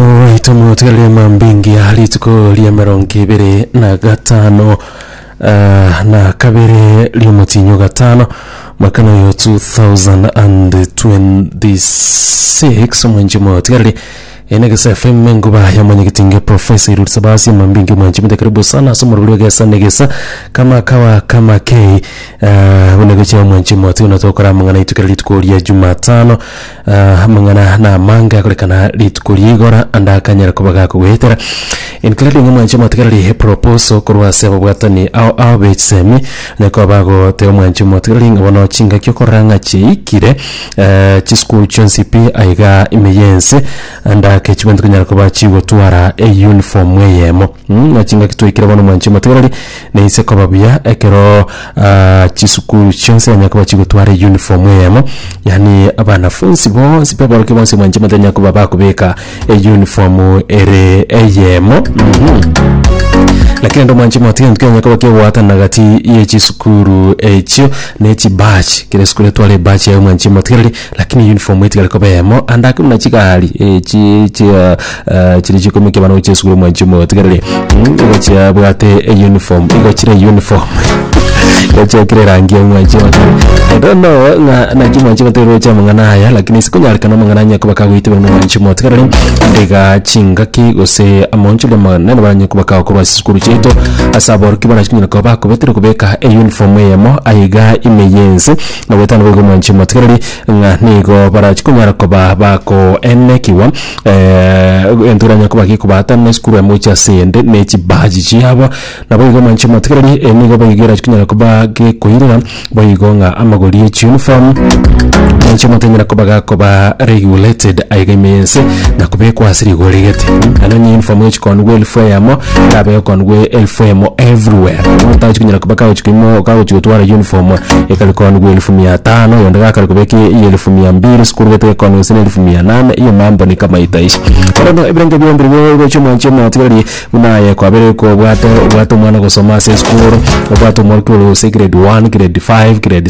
Oito motigarire mambingia rituko ria emerongo ebere na gatano ah, na kabere riomotinyo gatano mwaka noyo 2026 omwenji motigarire ene gesa fm enguba yamanyegetinge profesa iruri sabasi mambingi mwanji mite karibu sana ase omorori egesa na egesa kama kawa kama kei ah, buna gochia omwanji motigana tokora amang'ana aitwe kera rituko ria jumatano Ah, amang'ana na amange akorekana rituko ri'igora ande akanyare koba gakogoetera including omwanche omotigareri proposal korwa ase ababwatani ao ao b'echisemi na koba bagoteba omwanche omotigareri ng'a bono chingaki okorora ng'a chiaikire eh, chisukuru chionsi pi aiga ime yense ande ake chibwe ntikonyara koba chigotwara eyuniform eyemo Mh, na chingaki twaikire bono mwanchi omotegereri, na inse koba buya ekero ah, chisukuru chionsi yanya koba chigotwara eyuniform eyemo, yaani abanafunsi bonsi pe aborokia bonsi mwanchi omotegereri yanya koba bakobeka eyuniform ere eyemo mh. Lakini rende omwanchi omotegereri tikenya koba kegwatanana gati ye chisukuru echio na echi badge, kera esukuru etware ebadge yaye omwanchi omotegereri. Lakini uniform etigare koba eyemo, ande ake buna chigari echi chia eh, chiria chikoimokia abana gochia esukuru omwanchi omoyo otigarire mm, igo chiabwate euniform igo chire uniform igo chiakire erangi y'omwanchi omoto I don't know ng'a naki omwanchi omoto roche amang'ana aya lakini ase konyarekana amang'ana anya koba kagoitebera omwanchi omoyo otigarire iga chingaki gose amaonchori amanene baranye koba kagokorwa ase esukuru chiaito ase aborokia barachikonyara koba bakobetire kobeka euniform eyemo aiga ime yense na goetana boigo mwanche motigereri ng'a nigo barachi konyara koba bakoenekigwa egento eranyare koba gekobaata na esukuru amo gochia ase ende na echibaji chiabo. Naboigo mwanche motigereri eye nigo boigo erachi konyara koba gekoirera boigo ng'a amagori e chiuniform mwanche motiga enyara koba gakoba regulated aiga ime yense na kobekwa ase rigori gete. Nonye uniform egochi koonigwa elfu eyemo. kabe okonwe elfu emo everywhere omonto tagochi konyara koba kagochi koimo kagochi gotwara uniform ekare konwe elfu mia tano oyonde gakare kobeka eye elfu mia mbili esukuru gete ekonwe gose na elfu mia nane igo mambo ni kama itaisha bono no ebere nko bionde igo ogochi omwanchi omotigereri buna aye kwabere kobwate obwate omwana ogosoma ase esukuru obwate omorokigori gose grade one grade five grade.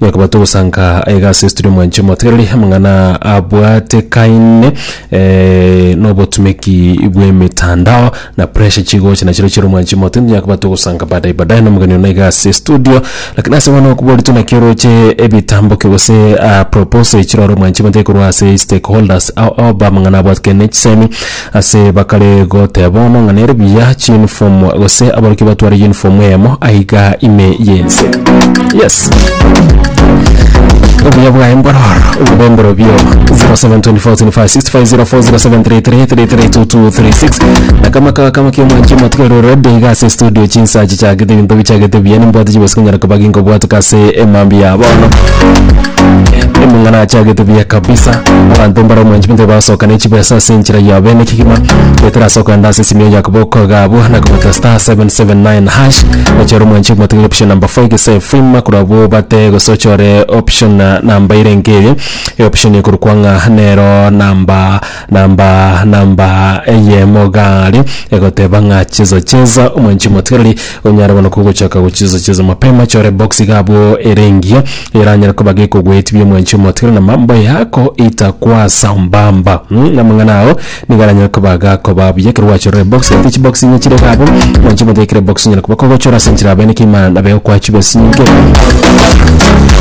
Gakaba togosanka aiga ase esituri omwanche omotegereri, amang'ana abwatekaine nobotumeki bw'emetandao, na pressure chigocha nachireo chi'ira omwanchi omote. Tonyakobaa togosanka baadaye baadaye nomogeni one iga ase estudio, lakini ase bono okobori tu naki oroche ebitambokio gose proposal echiroore omwanchi omote korwa ase stakeholders ao ao bamang'ana abwatekaine na chisemi Ase bakare goteba ono ng'a nere buya chiuniform gose abaruki batware uniform eyemo aiga ime y'ense. Yes. Obuya bwaye mbororo obobe mborobio 072445604073332236 na kama kawa kama kio mwanchi matigaro rode iga ase studio chinsachi chagete binto bichagete buya nimbwate chibesi konyara koba ginkobwatuka ase emambi ya bono Omong'ana achagete buya kabisa. Abanto mbare omwancho bintwe basoka ne chibesa ase enchera yabo ene kegima. Betera asoka ande ase esimio ya koboko gabo na kobeta star 779 hash. Ochore omwancho omotigere option number 4 gese fima korwa abwo obate gose ochore option number ere nkeye. Option ekorokwa ng'a nero number na mba na mba eyemo gare, egoteba ng'a cheza cheza omwanchi motigareri onyare bono kogochaka gocheza cheza mapema chore box iga abwo ere engiya eranyare koba gekogoetibia omwanchi omotigareri na mambo yako itakwasa mba mba mm, amang'ana ao nigo aranyare koba gakoba buya ekero gwachorire box egati chi box inye chire iga abwo omwanchi omotiga ekere box onyare koba kogochora ase enchera abene kima na bego kwachiba ase nyinge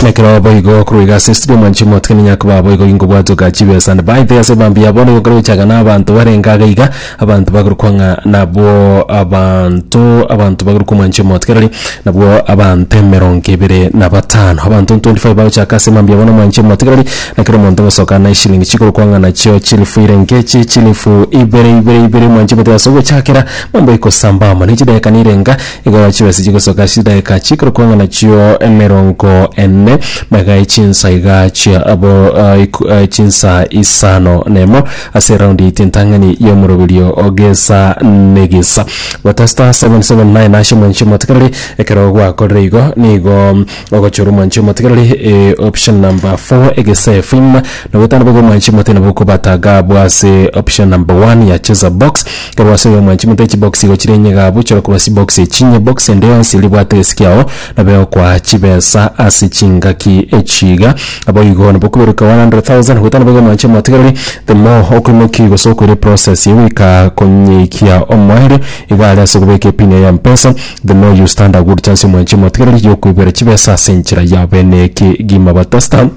na ekero boigo korwa iga ase estudio omwanchi omotiga ninyare koba boigo gingobwate ogachibe ase Ebaito y'ase Bambia bono egokora gochakana abanto barenge abe iga, abanto bakorokwa ng'a nabwo abanto abanto bakorokwa omwanchi omoto kerori nabwo abanto emerongo ebere na batano. Abanto 25 bagochaka ase Mambia bono omwanchi omoto kerori, na kera omonto ogosokana na eshilingi chikorokwa ng'a nachio chilifu ire inche echi chilifu ibere ibere ibere omwanchi omoto egasuka gochakera mambo ekosamba amo. Ne chidakika nirenga. Igo chibese chigosoka ase chidaeka chikorokwa ng'a nachio emerongo ene, megae chinsa iga chia abo eh, iku- eh, chinsa isano nemo ase eraundi yaito entang'ani y'omoroberio o gesa negesa. Gota star 779 ashe mwanche omotekereri ekero gwakorire igo nigo Ogochora omwanchi omote kero ri eh, option number 4 egesee film na gotana bobe omwanchi omote nabo okobataga abwo ase option number 1 ya cheza box kero wasoe omwanchi omote chibox igo chire enye gabu chora koba sibox echinye box ende yonsi eribwate egesiki ao nabe okoa chibesa ase chingaki echiga naboigo nabo okoberuka 100,000 gotana bobe omwanchi omote kero ri the more okoimoki gose okoira eprocess eye goika konyikia omoerio igo are ase okobeka epin yaye ya mpesa The more you stand a good chance omwanche emotigereri yokoibera chibesa ase enchera ya bene ekegima batasta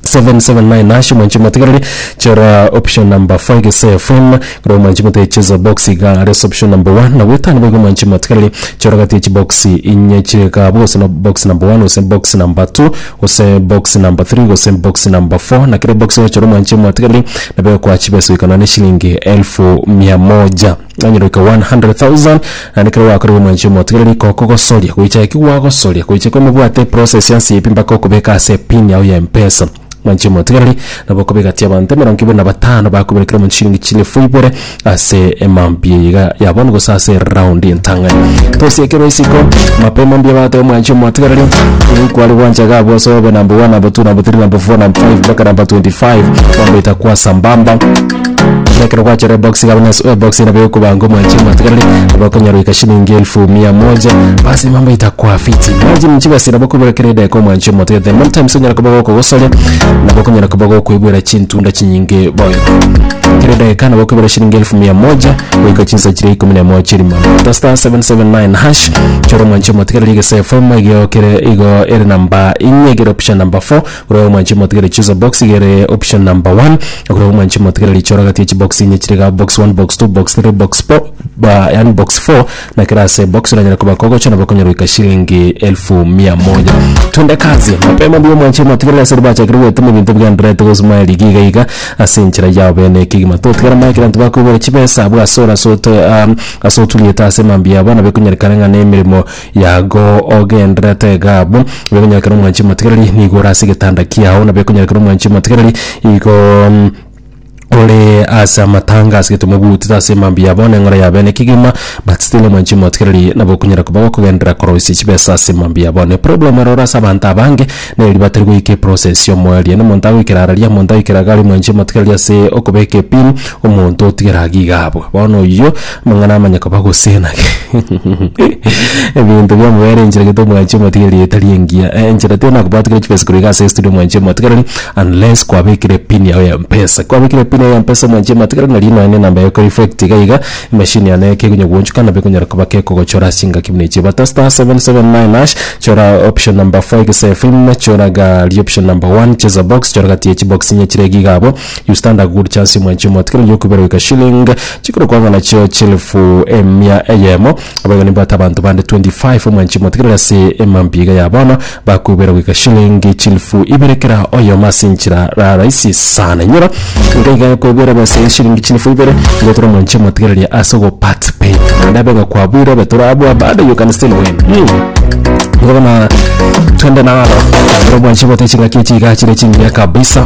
779 nashe omwanche emotigereri chera option number 5 ase fm kora omwanche mote cheza box iga are ase option number 1 na gwetana boigo omwanche emotigereri chora gati echi box inye chigabo gose no box number 1 gose box number 2 gose box number 3 gose box number 4 na kere box gochora omwanche emotigereri nabo ekoa chibesa goikana ne shilingi elfu mia moja Onyororoke 100,000 naende ekero gwakorire omwanchi omotigereri kokogosoria goicha gaki gwagosoria goicha kwemobwate eprocess ya nsibi mpaka okobeka ase epin yago ya mpesa mwanchi omotigereri nabo okobeka ati abanto emerongo ibere na batano bakobera kera omonto chilingi chilifu ibere ase emambia eye iga ya bono gose ase eround entang'ani tosie ekero isiko mapema mbuya bagoteba omwanchi omotigereri nigo kware gwancha iga abwo ase obe number one number two number three number four number five mpaka number 25 mambaita kwa sambamba. Buna ekero gwachora ebox iga buna ase ebox nabo ekoba ng'o mwanchire mwatigarire nabo okonyora goika shilingi elfu mia moja basi mambo itakwa fiti imagine nchibesa nabo okoibera kera edageka omwanchire omotete many times onyara koba gokogosoria nabo okonyara koba gokoibera chintunda chinyinge boigo kera edageka nabo okoibera shilingi elfu mia moja goika chinsa chire ikomi na emo chiri mono ta star 779 hash chora omwanchire omotgarire egese FM igo kere igo ere number ing'e egere opisha number 4 Okorwa omwanche motigere choose a box iga ere option number one. Okorwa omwanche motigere richora gati echi box inye chire iga box one box two box three box four ba yani box four na kera ase box oranyare koba kogocha nabo okonyora goika shilingi elfu mia moja. Twende kazi mapema mbuya omwanche motigere ase ribachakire goetema ebinto bigendererete gosumaya rigiya iga iga ase enchera yao bene ekegima totigara maye kera intwe bakoibora chibesa abwo ase ore ase oto ase oturiete ase mambia yabo nabo ekonyerekana ng'a nemeremo Yago, ogendererete iga abwo, bekonyerekera omwanchi omotigereri nigo ore ase egetanda kiao, na bekonyerekera omwanchi omotigereri igo mm, ore ase amatanga ase egetemo bwotito ase emambia yabo na eng'ora yabe ne kegima, but still omwanchi omotigereri nabo okonyara koba gokogenderera koroisia chibesa ase emambia yabo. Ne problem ero ore ase abanto abange, neri batari goika eprocess ya omoerio. Na omonto agoikera araria, omonto agoikera iga aria omwanchi omotigereri ase okobeka epin, omonto otigera iga abwo. Bono oyio. Amang'ana amanya koba gose naki? Ebinto biamobere enchera gete omwanchi omotigereri etari engiya. Eh, enchera tiyo nakobatigera chibesa korwa iga ase estudio omwanchi omotigereri unless kwabekire pin yao ya mpesa. Kwabekire pin yao ya mpesa omwanchi omotigereri nari nonya ne enamba yago ekore effect iga iga, emachine yane eke ekonya goonchuka nabo ekonyara koba kekogochora ase chingaki buna echio. Bata star seven seven nine hash, chora option number four egesaifin, choraga rioption number one cheza box, chora gati ya chibox inye chire iga iga abwo. You stand a good chance mwanchi omoto kero yokubera goika shilling chikoro kwanga nachio chielfu emia eyemo abaiga nimbwate abanto bande 25 mwanchi omoto kero ase emambi iga ya bono bakubera goika shilling chielfu ibere kera oyomo ase enchera ra rahisi sana inyora ngaiga ekobera ebesa ya shilling chielfu ibere ngotore mwanchi omoto kereria ase ogo part pay naende abe ngakwabuire obe torabua bado you can still win mm. Ngabona twende nalo ero mwanchi omoto chingaki chiga chire chingiya kabisa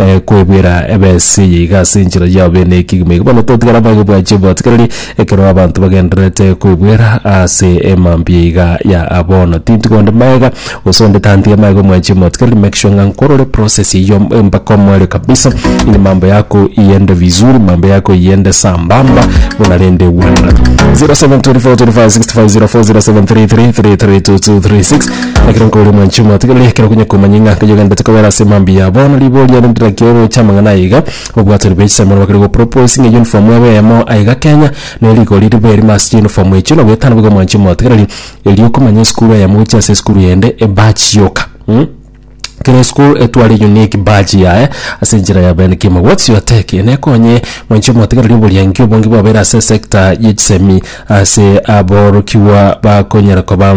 eh, kwebwera ebesa eye iga ase enchera yao bene ekegima iga bono totigara bage bwa cheboti kereri ekero abanto bagendererete kwebwera ase emambia iga ya abono tintu gonde maega gose onde tantiga maega omwa cheboti kereri make sure ng'a nkorore process eyio eh, mpaka omoerio kabisa ili mambo yako iende vizuri mambo yako iende sambamba buna rende wanda 0724256504 0733332236 Ekero nkorwa omwanchi omotigereri, ekero konya komanye ng'a nkaye ogenderete kobera ase mambia yabo, na riboria rinde rirakire oroche amang'ana aye iga, obwatoria bwa echisaimo nabakire gopropose ng'a eyunifomu ebe eyemo aiga Kenya, ne rigori ribe erimo ase chiyunifomu echio, na goetana boigo omwanchi omotigereri, erio okomanya esukuru eyemo gochia ase esukuru eyende, ebadge yoka mh. Kera esukuru etware unique badge yaye ase enchera ya Ben Kimo. What's your take? Nekonye mwanchi omotigereri oboria inki obonge bwabeire ase esector ya echisemi ase aborokigwa bakonyara koba.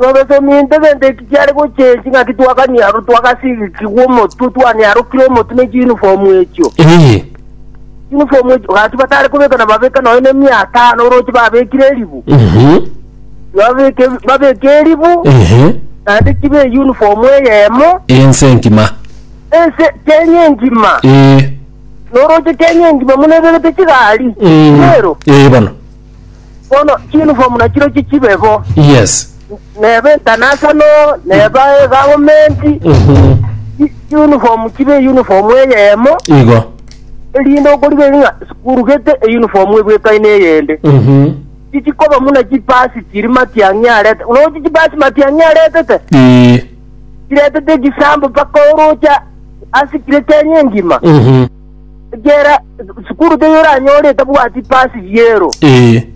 Nobosomi intwe gento eki kiare gochia ense ng'aki twakanie aroro twagasigigigwa omotwe twane arokire omotwe ne chiunifomu echio. Ee. Unifomu echio gati batare kobeka na babeka nonya ne mia atano oroche babekire eribu. Mhm. Babeke babeke eribu Ehe. naende chibe eyunifomu eyemo Ense engima. ense Kenya engima. Ee. Noroche Kenya engima buna ebegete chigari. Mm. Rero Ee bono. Bono chiuniform nachirochio chibe bo. Yes. Neba international, neba e government, Mhm. chi- uniform chibe uniform eyemo, Igo. erinde okoriga eri ng'a sukuru gete uniform ebwekaine eyende. Mhm. Chichikoba muna chipasi chiri matiang'i arete. Unaochi chipasi matiang'i aretete? Ii. Chiretete echisambo mpaka orocha asikire Kenya engima. Mhm. Kera sukuru teyoranyore etabwati pasi biero. Ee.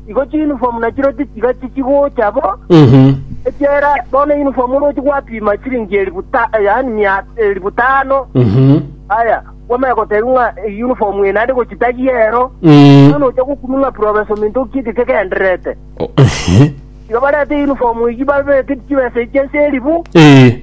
Igo chiuniform nachiro tichiga chichigocha bo. Mhm. Ekera bono uniform orochi gwapima chiringi elifu ta yaani mia elifu tano. Mhm. Aya, kwamanya goteba ng'a eh, uniform eno ande gochitagia ero. Mm. Bono ocha gokumi ng'a professor minto okieke kegendererete. O- ehe. Igo barete uniform eyio babete chibesa echia ase elifu. Ee.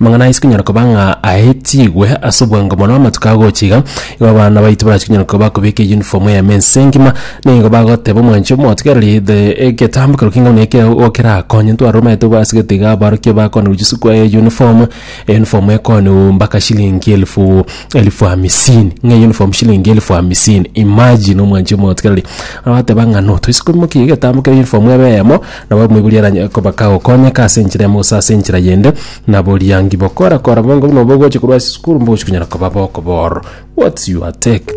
Amang'ana aise konyara koba ng'a aetigwe ase obwango mono amatuko agocha iga, igo abana baito barachi konyara koba bakobeka eyunifomu eyemo ense engima, na igo bagoteba omwanchi omotigereri the egetambe korwa king'ao na ekero igo kerakonye ntware omanyete obo ase egento iga aborokigwa bakona gochia sukuru aya eyunifomu, eyunifomu ekooniwu mbaka shilingi elfu elfu hamisini, ng'a eyunifomu shilingi elfu hamisini. Imagine omwanchi omotigereri, agoteba ng'a no toise komokia egetambe kia eyunifomu ebe eyemo. Nabo omoibori aranyare koba kagokonyeka ase enchera emo gose ase enchera yende, na boriangi bokora kora bongo buna obwo ogocha korwa ase esukuru mbogochia konyara koba bokobororo. What's your take?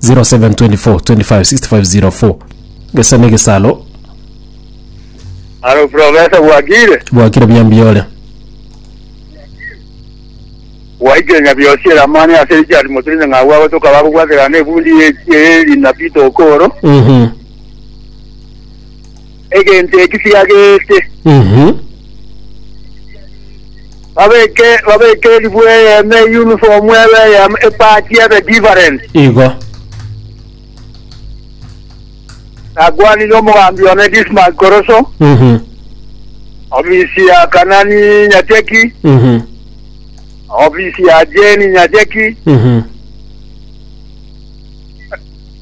0724256504 gesa na egesaro Haro profesa bwakire bwakire buya mbuya ore. waikire nyabiosi eramani ase richard motirinyi ng'abu abo tokaba gobwaterana ebundi ye- ye- erina pito okoro Mhm. egento eki siagete. Mhm. Babeke babeke eribu eyemo eyunifomu ebe eyemo epati ebe different. Igo. Nakwanire omogambi one Dismas Koroso, Mhm. ofisi ya Kanani Nyacheki, Mhm. ofisi ya Jeni Nyacheki, Mhm.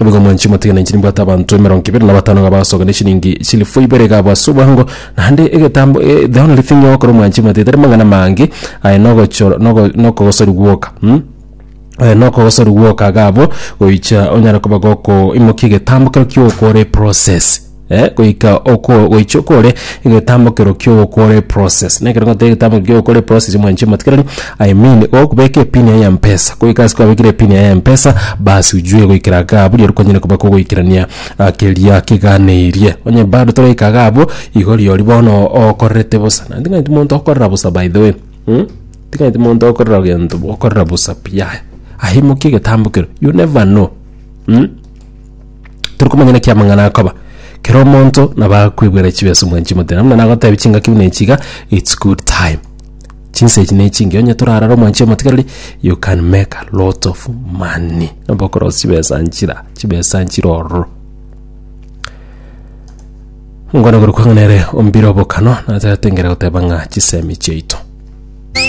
Naboigo mwanche motige nainche nimbwate abanto emerongo ebere na batano iga bagosoka ne chilingi chilifu ibere iga abwo ase obwango, naende egetambo eh, the only thing ogokora omwanche motige tari mang'ana amange aye nogochoro nogo nokogosoria gwoka mm. Eh, nokogosoria gwoka iga abwo goicha onyare koba gokoimokia egetambo kero kiokora eprocess. goika oko goicha okore egetambokero ki'ogokora eprocess. Nekero ngoteba egetambokero ki'ogokora eprocess mwanche motikereri I mean gokobeka epin yaye ya mpesa goika ase kwabekire epin yaye ya mpesa bas ujue goikera igaa abwo riria okonyara koba kogoikerania keria keganeirie. Onye bado toraika igaa abwo igo riori bono okorerete bosa naende ting'anti monto okorera bosa by the way mh ting'anti monto okorera gento okorera bosa pi yaya aye aimokia egetambokero you never know mh. Tori komanya naki amang'ana akoba. Kera omonto nabo akwegwera chibeso mwe chimotera. Muna nagotebi chingaki buna echiga, it's good time. Chinsa echi ne chingi. Onye torarara omwanchi omotigareri, you can make a lot of money. Nabo okorosia chibesa nchira, chibesa nchira ororo. Mungwana korokwa ng'a nere ombire obokano, natera tengera goteba ng'a chisemi chiaito.